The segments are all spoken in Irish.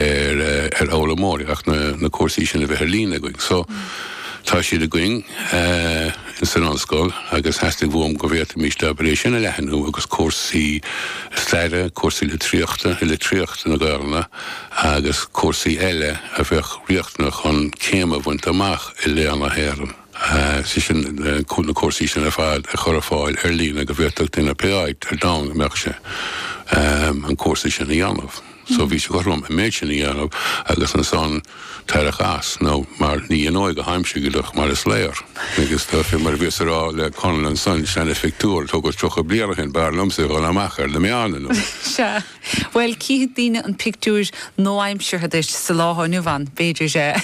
ar ar fhoghlaimeoirí ach na na cúrsaí sin a bheith ar líne againn. So tá siad againn in san ollscoil agus theastaigh uaim go bhféadfaimís é sin a leathnú agus cúrsaí staire, cúrsaí litríochta, litríocht na Gaelainne agus cúrsaí eile a bheadh riachtanach chun céim a bhaint amach i Léann na hÉireann, sé sin na cúrsaí sin ar fad a chur ar fáil ar líne go bhféadfadh duine pé áit ar domhan a mbeadh sé an cúrsa sin a dhéanamh. so bhí sé cothrom an méid sin a dhéanamh agus ansan tarrac as, nó mar ní dheanóidh go haimsigilach mar is léir, agus tá fé mar a bhíos a rá le Conall ansan, seana phictiúr a tógadh tríocha bliain ó shin, b'fhearr liomsa a dhul amach ar na meáin anois. Sea. Bhuel, cífidh daoine an pictiúir nua-aimseartha duit sa lá atá inniu ann, b'fhéidir,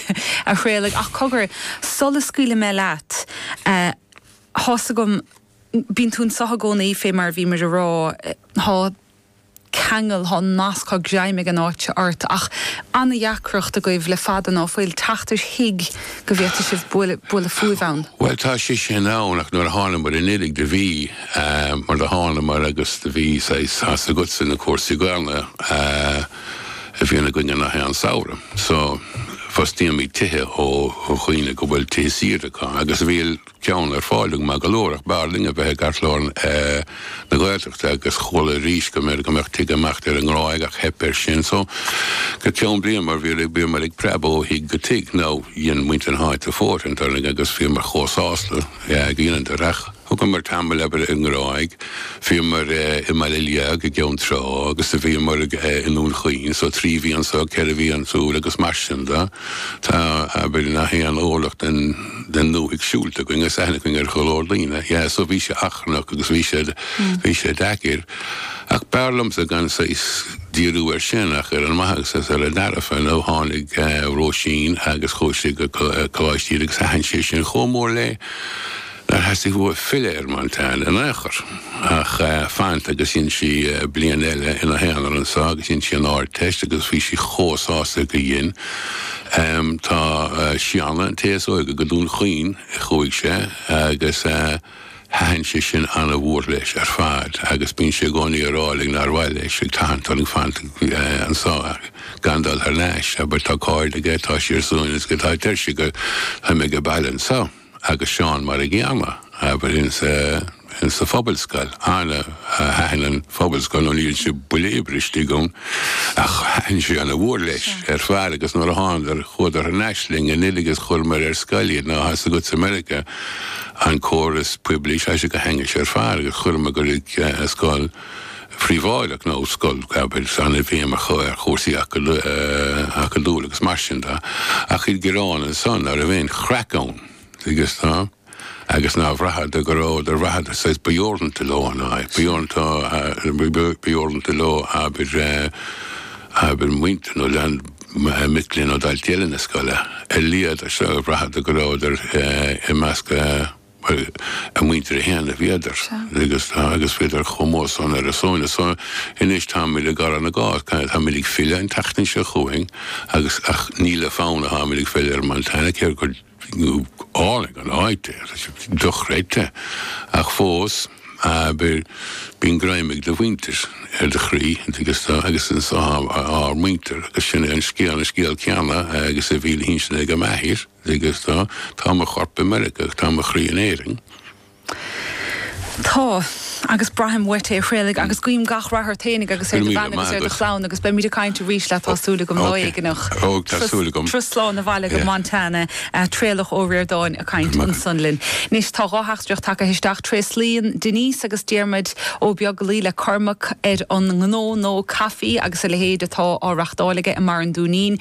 a Thraolaigh, ach cogar, sula scaoilfidh mé leat, tá's agam, bíonn tú anso i gcónaí fé mar a bhímid a rá, tá. ceangal, tá an nasc, tá greim ag an áit seo ort. Ach an-deacracht agaibh le fada ná fuil teacht ar thigh go bhféadfadh sibh bualadh fúibh ann. Bhuel, tá sé sin ann, ach nuair a thánamair anuraidh do bhí, mar do thánamair agus do bhí saghas, tá's agatsa na cúrsaí Gaelainne a bhíonn againn nach aon samhradh. So, fostaíomid tithe ó dhaoine go bhfuil tithe saoire acu agus bhí, ceann ar fáil agam, maith go leor, ach b'fhearr linn a bheith i gceartlár na Gaeltachta agus chuala arís go mbeidh go mbeadh tigh ag imeacht ar an nGráig ach theip air sin so go ceann bliana mar bhíomar ag preabadh ó thigh go tigh nó dhein muintir na háite fóirithint orainn agus bhíomar chomh sásta gur dheineadar ach thugamar tamall, abair, ar an nGráig, bhíomar i mBaile an Liaigh i gCeann Trá agus do bhíomar i nDún Chaoin so trí mhí anso, ceithre mhí ansúd agus mar sin do tá abair, nach aon orlach den. den ndúthaigh siúlta againn agus aithne againn ar go leor daoine. Yeah, so bhí sé achrannach agus bhí sé, bhí sé deacair. Ach b'fhearr liomsa gan saghas díriú air sin ach ar an maitheas is ar an dearfa, you know. Tháinig Róisín agus chuaigh sí go Coláiste Íde agus thaitin sé sin chomh mór léi nár theastaigh uaithi filleadh ar Montana in aon chor. Ach fanacht agus dhein sí bliain eile ina haonar anseo agus dhein sí an Ardteist agus bhí sí chomh sásta gur dhein. Tá Seanadh an té is óige go Dún Chaoin a chuaigh sé agus thaitin sé sin an-mhór leis ar fad agus bíonn sé i gcónaí á rá linn nár mhaith leis ag tathant orainn fanacht anso gan dul thar n-ais abair tá cairde aige, tá sé ar a shuaimhneas, tá deir sé gur táim aige baile anso. agus Seán mar a gcéanna, abair, ins sa phobalscoil, ar nó thaitin an phobalscoil, nó ní dhein sé buille oibre istigh ann, ach thaitin sé ana-mhór leis ar fad, agus nuair a thánadar, chuadar thar n-ais linn anuraidh is chuireamair ar scoil iad, ná tá's agatsa i Meiriceá an córas poiblí, tá sé go hainnis ar fad, agus chuireamair go scoil. phríobháideach nó scoil abair an-fheidhm acu ar chúrsaí acadúla agus mar sin de, ach iad ag gearán ansan ná raibh aon chraic ann agus ná agus ná braitheadar go rabhadar ná braitheadar saghas ba dheoranta leo an fhadhb, ba dheoranta ba dheoranta leo abair abair muintir nó lean mic léinn nó daltaí eile na scoile ar leith, agus bhraitheadar go raibheadar i measc Bhuel, a muintir féin, bhíodar. Sea. Agus tá, agus bhíodar chomh mór san ar a sóin is. So, anois táimid ag gabháil na gcás, tá, táimid ag filleadh an tseachtain seo chugainn agus, ach ní le fonn a táimid ag filleadh ar Montana, cé gur álainn an áit é, tá sé dochreidte, ach fós, abair, bíonn greim ag do mhuintir ar do chroí, agus tá, agus ins ár muintir agus sin é an scéal, an scéal céanna agus a bhí le hinsean ag m'athair. Ag dó. Tá mo chorp i Meirice ach tá mo chroí in Éirinn. Tá. Agus braithim uait é a Thraolaigh agus guím gach rath ort féinig agus ar do bhean agus ar do chlann agus beimid ag caint arís leat, tá súil agam, lá éigin. Ó, tá súil agam. Turas slán abhaile go Montana, Traolach Ó Ríordáin ag caint ansan linn. Anois tá dhá theachtaireacht tagtha isteach. Tréaslaíonn Denise agus Diarmaid Ó Beaglaoich le Cormac ar an ngnó, nó caifí agus a leithéid, atá á reachtáil aige i mBarr an Dúinín.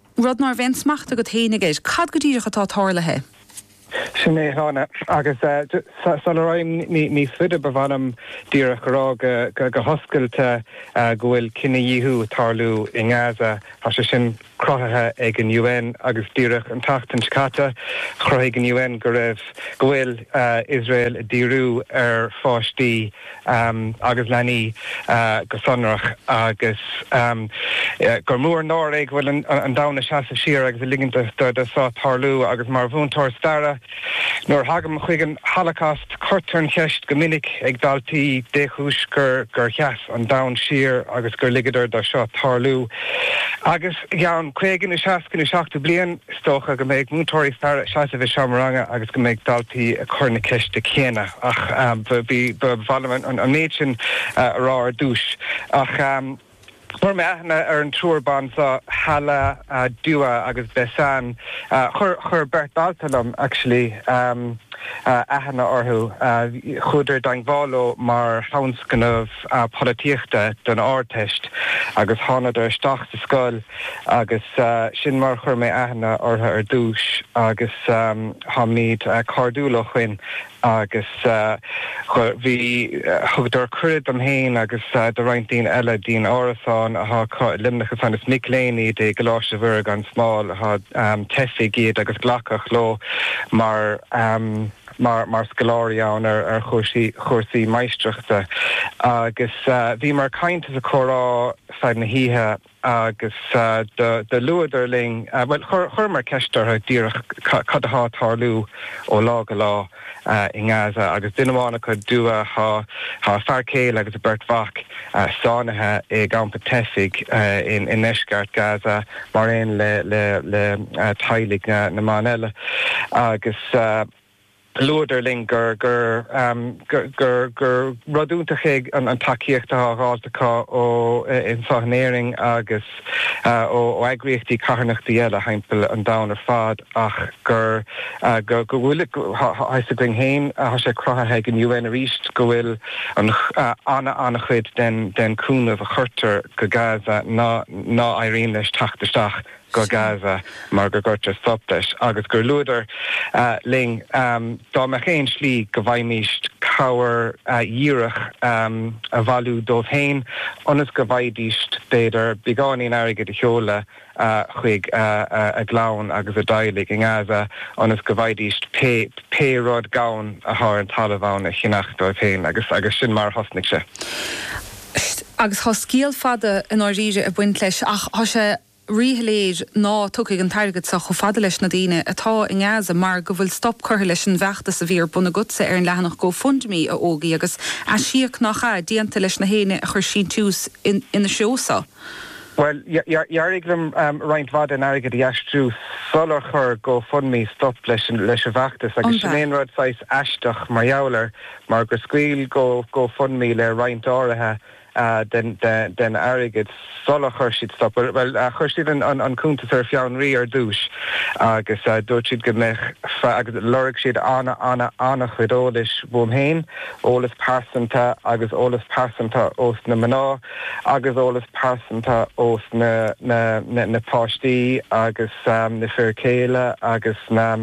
rud ná raibh aon smacht agat féinig air. Cad go díreach atá tarlaithe? Sin é a Sheáin. Agus sula ragham níos faide ba mhaith liom díreach a rá go hoscailte go bhfuil cinedhíothú ag tarlú i nGaza. Tá sé sin cruthaithe ag an UN agus díreach an tseachtain seo caite chruthaigh an UN go raibh, go bhfuil Iosrael ag díriú ar pháistí, agus leanaí go sonrach, agus gur mór an náire é go bhfuil an domhan ag seasamh siar agus ag ligint do so tarlú, agus mar mhúinteoir staire, nuair a thagaim chuig an Holocaust, cuirtear an cheist go minic ag daltaí, dé chúis gur gur sheas an domhan siar agus gur ligeadar do seo tarlú. Agus i gceann caoga nó seasca nó seachtó bliain. Is dócha go mbeidh múinteoirí staire ag seasamh i seomra ranga agus go mbeidh daltaí ag cur na ceiste céanna ach ba mhaith liom an méid sin a rá ar dtúis. Ach chuir mé aithne ar an triúr ban seo, Hala, Dua agus Besen, chuir beirt dalta liom actually aithne orthu, chuadar i dteangmháil leo mar thionscnamh. polaitíochta don Ardteist agus thánadar isteach sa scoil agus sin mar a chuir mé aithne orthu ar dtúis agus táimid cairdiúil ó shoin agus bhí, thugadar cuireadh dom fhéin agus do roinnt daoine eile dtí'n árasán athá acu i Luimneach ansan. Is mic léinn iad i gColáiste Mhuire gan Smál athá teifigh iad agus glacadh leo mar. mar scoláirí ann ar chúrsaí máistreachta agus bhíomar ag caint is ag comhrá feadh na hoíche agus do luadar linn, bhuel, chuireamar ceist orthu díreach cad atá ag tarlú ó lá go lá i nGaza agus duine amháin acu, Dua, tá a fear céile agus a beirt mhac sáinnithe i gcampa teifigh i ndeisceart Gaza. mar aon le teaghlaigh na mban eile, agus luadar linn gur rud iontach é an tacaíocht atá á dháilt acu anso in Éirinn agus ó eagraíochtaí carthanachta eile thimpeall an domhain ar fad. ach gur go bhfuil, is eol dúinn féin, tá sé cruthaithe ag an UN arís go bhfuil an-chuid den chúnamh a chuirtear go Gaza ná éiríonn leis teacht isteach go Gaza mar go gcuirtear stop leis agus gur luadar linn dá mbeadh aon slí go bhféadfaimis cabhair dhíreach a bhailiú dóibh féin ionas go bhféadfaidís, b'fhéidir, beagáinín airgid a sheoladh chuig a gclann agus a dteaghlaigh i nGaza ionas go bhféadfaidís pé rud gann atá ar an talamh ann a cheannach dóibh féin. Agus sin mar a thosnaigh sé. Agus tá scéal fada i ndáiríre ag baint leis ach tá sé ríshoiléir ná tiocfaidh an t-airgead seo chomh fada leis na daoine atá i nGaza mar go bhfuil stop curtha leis an bhfeachtas a bhí ar bun agatsa ar an leathanach GoFundMe, a Ógie, agus aisíoc, nach ea, déanta leis na héinne a chuir síntiús ina threo sa. Bhuel, d'éirigh liom roinnt mhaith den airgead a aistriú sular chuir GoFundMe stop leis an bhfeachtas, agus sin é an rud saghas aisteach mar gheall air, mar gur scaoil GoFundMe le roinnt áirithe den airgead sular chuir siad stop, bhuel, chuir siad an cuntas ar fionraí ar dtús, agus dúirt siad go mbeadh, agus lorg siad an-an-an-an-an-chuid eolais uaim féin, eolas pearsanta agus eolas pearsanta ós na mná. agus eolas pearsanta ós na páistí agus na fir céile agus na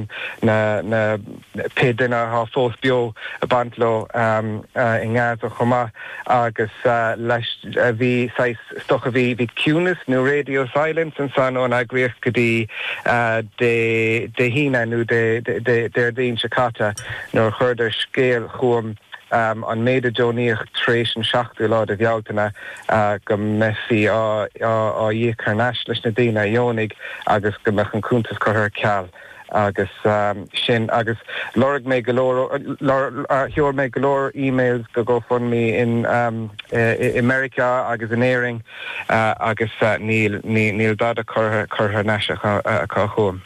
pé duine athá fós beo a bhain leo i nGaza chomh maith agus leis bhí saghas stop bhí ciúnas nó radio silence ansan ón eagraíocht go dtí Dé hAoine nó Dé Déardaoin seo caite nuair a chuireadar scéal chugam an méid a deonaíodh tar éis an 7ú lá de Bhealtaine, go mbeifí á íoc thar n-ais leis na daoine a dheonaigh agus go mbeadh an cuntas curtha ar ceal agus sin agus lorg mé go leor sheol mé go leor emails go Gofundme i Meiriceá agus in Éirinn agus níl dada curtha thar n-ais acu chugam.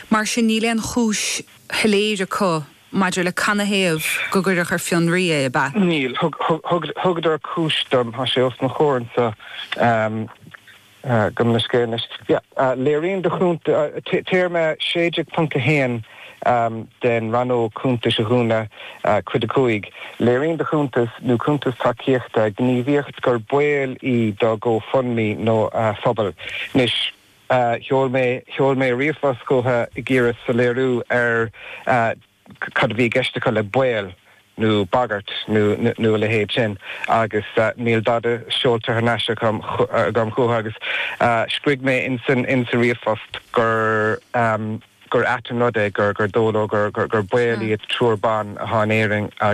Mar sin níl aon chúis shoiléir acu maidir le cad ina thaobh go gcuireadh ar fionraí é, ab ea? Bhuel, thugadar cúis dom, tá sé os mo chomhair anseo agam ar mo scáileán anois, léiríonn do chuntas, téarma 16.1 den Rannóg Cuntas a dhúnadh, Cuid 5, léiríonn do chuntas, nó cuntas tacaíochta, gníomhaíocht gur baol í do GoFundMe nó a phobal. Anois. sheol mé, sheol mé ríomhphost chucu ag iarraidh soiléiriú ar cad a bhí i gceist acu le 'baol' nó 'bagairt' nó a leithéid sin agus níl dada seolta thar n-ais acu chugam chucu agus scrígh mé insa ríomhphost gur ait an rud é gur dóigh leo gur baol iad triúr ban atá in Éirinn